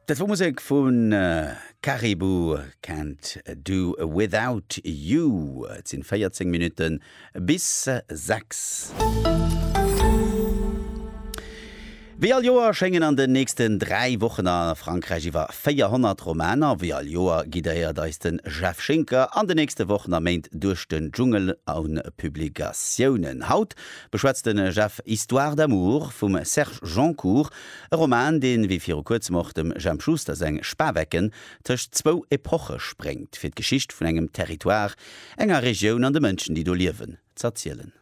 Dat wor Musek vu Caribou, Can't Do Without You. Et sinn 14 Minutten bis 6. Wéi all Joer schéngen an den nächsten 3 Wochen a Frankräich iwwer 400 Romaner. Wéi all Joer guidéiert eis den Jeff Schinker an den nächsten Wochen a Méint duerch den Dschungel un Publikatiounen. Haut beschwätzt den Jeff Histoire d'amour vum Serge Joncour, e Roman, deen, wéi viru kuerzem och dem Jemp Schuster seng Spawecken, tëscht zwou Epoche spréngt, fir d'Geschicht vun engem Territoire, enger Regioun an de Mënschen, déi do liewen, z'erzielen.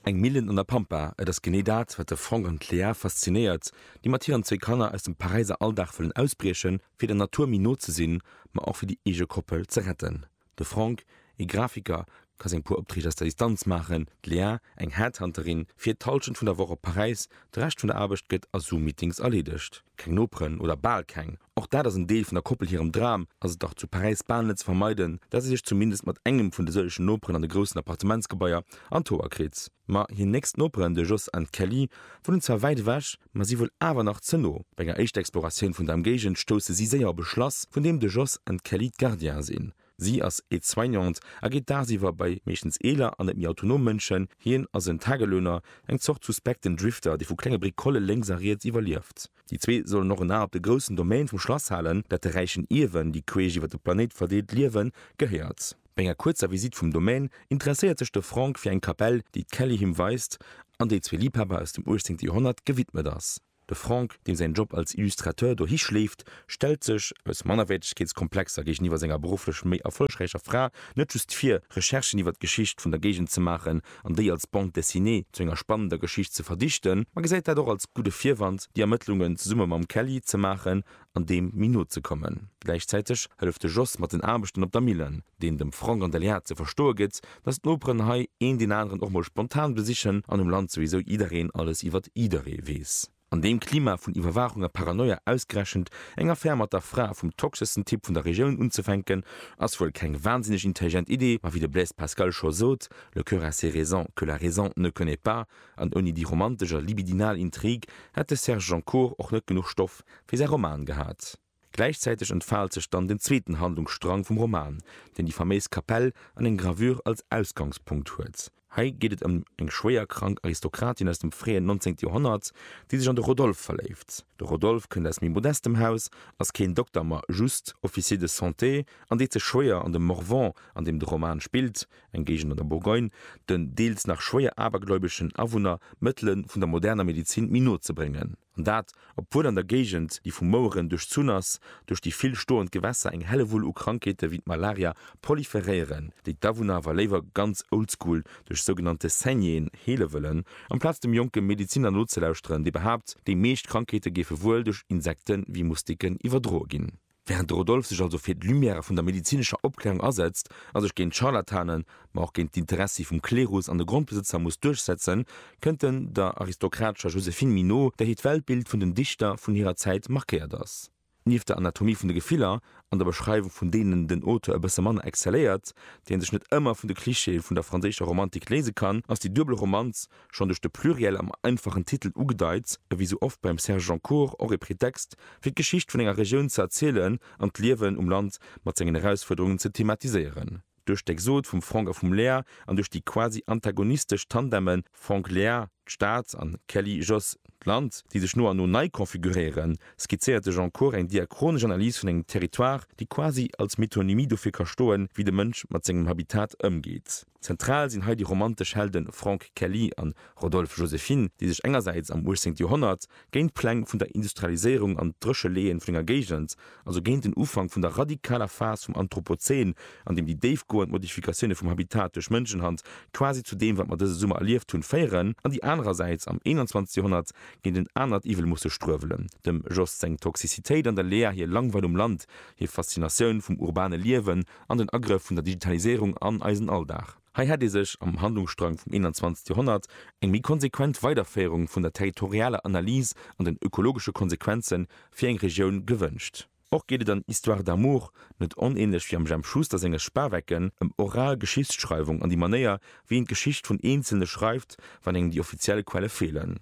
Eng Millen an der Pampa, et ass genee dat, wat de Franck an d'Léa faszinéiert, déi mat hiren zwee Kanner aus dem Paräiser Alldag wëllen ausbriechen, fir der Natur méi no ze sinn, ma och fir déi eege Koppel ze retten. De Franck, ee Grafiker, ka seng puer Opträg aus der Distanz maachen, d'Léa, eng Headhunterin, fiert d'Hallschent vun der Woch op Paräis, de Rescht vun der Aarbecht gëtt a Zoom-Meetings erleedegt. Keng Noperen, oder bal keng. Och dat ass en Deel vun der Koppel hirem Dram, ass et dach zu Paräis bal net ze vermeiden, dat si sech zumindest mat engem vun de sëllegen Noperen an de groussen Appartementsgebaier an d'Hoer kritt. Ma hir nächst Noperen, de Jos an d'Kelly, wunnen zwar wäit ewech, ma si wuel awer nach ze no. Bei enger éischter Exploratioun vun der Emgéigend stousse si séier op e Schlass, vun deem de Jos an d'Kelly d'Gardiene sinn. Si ass Aide-soignante a geet dagsiwwer bei meeschtens eeler an net méi autonom Mënschen, hien ass en Tagelöhner, eng Zort suspekten Drifter, dee vu klenge Bricole lénks a riets iwwerlieft. Déi zwee sollen och en A op de groussen Domaine vum Schlass halen, dat de räichen Ierwen, déi queesch iwwer de Planéit verdeelt liewen, gehéiert. Bei enger kuerzer Visitt vum Domaine interesséiert sech de Franck fir eng Kapell, déi d'Kelly him weist an déi zwee Liebhaber aus dem 18. Joerhonnert gewidmet ass. De Franck, deem säin Job als Illustrateur dohi schléift, stellt sech, aus Mannerwäertegkeetskomplexer géigeniwwer senger berufflech méi erfollegräicher Fra, net just vir, Recherchen iwwer d'Geschicht vun der Géigend ze maachen an déi als Bande dessinée zu enger spannender Geschicht ze verdichten, ma gesäit dat och als gudde Virwand, déi Ermëttlungen zesumme mam Kelly ze maachen an deem méi no ze kommen. Gläichzäiteg hëlleft de Jos mat den Aarbechten op der Millen, deen dem Frank an der Léa ze verstoe gëtt, dass d'Noperen hei een deen aneren och mol spontan besichen an um Land souwisou jiddereen alles iwwert jidderee weess. An deem Klima vun Iwwerwaachung a Paranoia ausgerechent eng Affär mat der Fra vum toxeschsten Typ vun der Regioun unzefänken, ass wuel keng wahnsinneg intelligent Idee, ma wéi de Blaise Pascal scho sot, Le cœur a ses raisons que la raison ne connaît pas, an ouni déi romantesch a libidinal Intrigue hätt de Serge Joncour och net genuch Stoff, fir säi Roman gehat. Gläichzäiteg entfaalt sech dann den zweeten Handlungsstrang vum Roman, deen déi faméis Kapell an eng Gravure als Ausgangspunkt huet. Hei geet et ëm eng schwéier krank Aristokratin aus dem fréien 19. Joerhonnert, déi sech an de Rodolphe verléift. De Rodolphe kënnt aus méi modestem Haus, ass keen Dokter, ma just Officier de santé an deet sech schwéier, an de Morvan, an deem de Roman spillt, eng Géigend an der Bourgogne, den deels nach schwéier abergläubeschen Awunner d'Mëttele vun der moderner Medezin méi no ze bréngen. An dat, obwuel an der Géigend, déi vu Moueren duerchzunn ass, duerch déi vill stoend Gewässer eng Hellewull u Krankheete wéi d'Malaria proliferéieren, déi d'Awunner awer léiwer ganz oldschool duerch sougenannte Saignéeën heele wëllen, amplaz dem jonke Medeziner nozelauschteren, dee behaapt, déi meescht Krankheete géife wuel duerch Insekte wéi Moustiquen iwwerdroe ginn. Während de Rodolphe sech also fir d'Lumière vun der medezinescher Opklärung asetzt a sech géint d'Scharlatanen, ma och géint d'Interessi vum Klerus an de Grondbesëtzer muss duerchsetzen, kënnt en der aristokratescher Joséphine Minot, där hiert Weltbild vun den Dichter vun hirer Zäit markéiert ass. Nieft der Anatomie vun de Gefiller an der Beschreiwung vun deenen den Auteur e bësse manner excelléiert, déi en sech net ëmmer vun de Clichéë vun der franséischer Romantik léise kann, ass déi duebel Romanz, schonn duerch de Pluriel am einfachen Titel ugedeit, e wéi sou oft beim Serge Joncour och e Pretext, fir d'Geschicht vun enger Regioun ze erzielen an d'Liewen um Land mat sengen Erausfuerderungen ze thematiséieren. Duerch d'Exode vum Franck a vum Léa an duerch déi quasi antagonistesch Tandeme Franck-Léa, d'Stad, an Kelly-Jos, d'Land, déi sech no an no nei konfiguréieren, skizzéiert de Joncour eng diachronesch Analys vun engem Territoire, déi quasi als Metonymie dofir ka stoen, wéi de Mënsch mat sengem Habitat ëmgeet. Zentral sinn hei déi romantesch Helde Franck Kelly a Rodolphe Joséphine, déi sech engersäits am 18. Joerhonnert géint d'Pläng vun der Industrialiséierung an d'Drécheleeë vun enger Géigend, also géint den Ufank vun der radikaler Phas vum Anthropozän, an deem déi déifgoend Modifikatioune vum Habitat duerch Mënschenhand quasi zu deem, wat mer dëse Summer erlieft hunn, féieren, an déi anerersäits am 21. Joerhonnert géint en anert Iwwel musse struewelen, dem Jost seng Toxicitéit an der Lea hir Langweil um Land, hir Faszinatioun vum urbane Liewen an den Agrëff vun der Digitaliséierung an eisen Alldag. Hei hätt ee sech am Handlungsstrang vum 21. Joerhonnert eng méi konsequent Weiderféierung vun der territorialer Analys an den ökologesche Konsequenze fir eng Regioun gewënscht. Och geet et an Histoires d'amour, net onänlech wéi am Jemp Schuster senge Spawecken, ëm oral Geschichtsschreiwung an déi Manéier, wéi een d'Geschicht vun Eenzelne schreift, wann engem déi offiziell Quelle feelen.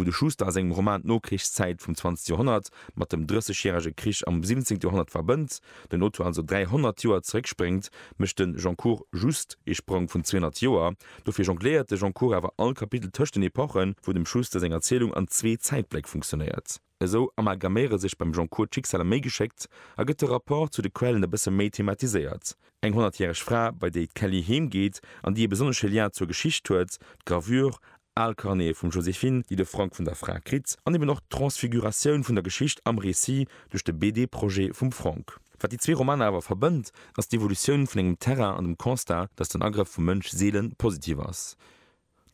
Wou de Schuster a sengem Roman d'Nokrichszäit vum 20. Joerhonnert mat dem Drëssegjärege Krich am 17. Joerhonnert verbënnt, den Auteur also 300 Joer zeréckspréngt, mécht de Goncourt just ee Sprong vun 200 Joer. Dofir jongléiert de Goncourt awer all Kapitel tëscht den Epochen, wou dem Schuster seng Erzielung an zwee Zäitbléck funktionéiert. Esou amalgaméiere sech beim Goncourt d'Schicksaler méi geschéckt a gëtt de Rapport zu de Quellen e bësse méi thematiséiert. Eng honnertjäreg Fra, bei déi d'Kelly heem geet an déi e besonnesche Lien zur Geschicht huet, d'Gravure, al Carnete vum Joséphine, déi de Frank vun der Fra kritt, an eben och d'Transfiguratioun vun der Geschicht am Récit duerch de BD-Projet vum Frank. Wat déi zwee Romaner awer verbënnt, ass d'Evolutioun vun engem Terrain an dem Constat, datt den Agrëff vum Mënsch seele positiv ass.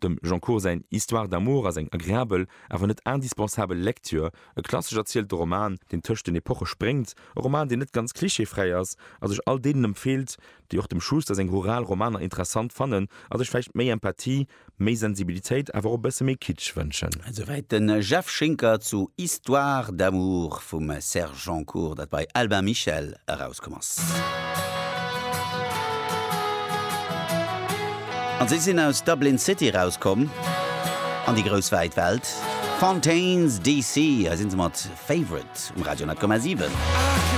Dem Goncourt säin Histoire d'amour ass eng agreabel, awer net indispensabel Lecture. E klassesch erzielten Roman, deen tëscht den Epoche spréngt, e Roman, deen net ganz clichéfräi ass a sech all deenen empfeelt, déi och dem Schuster seng rural Romaner interessant fannen a sech vläicht méi Empathie, méi Sensibilitéit, awer och e bësse méi Kitsch wënschen. Esouwäit de Jeff Schinker zu Histoire d'amour vum Serge Goncourt, dat bei Albin Michel erauskomm ass. Stad komm ass. An si sinn aus Dublin City erauskomm an déi grouss wäit Welt. Fontaines DC, hei sinn se mat Favourite um Radio 100,7.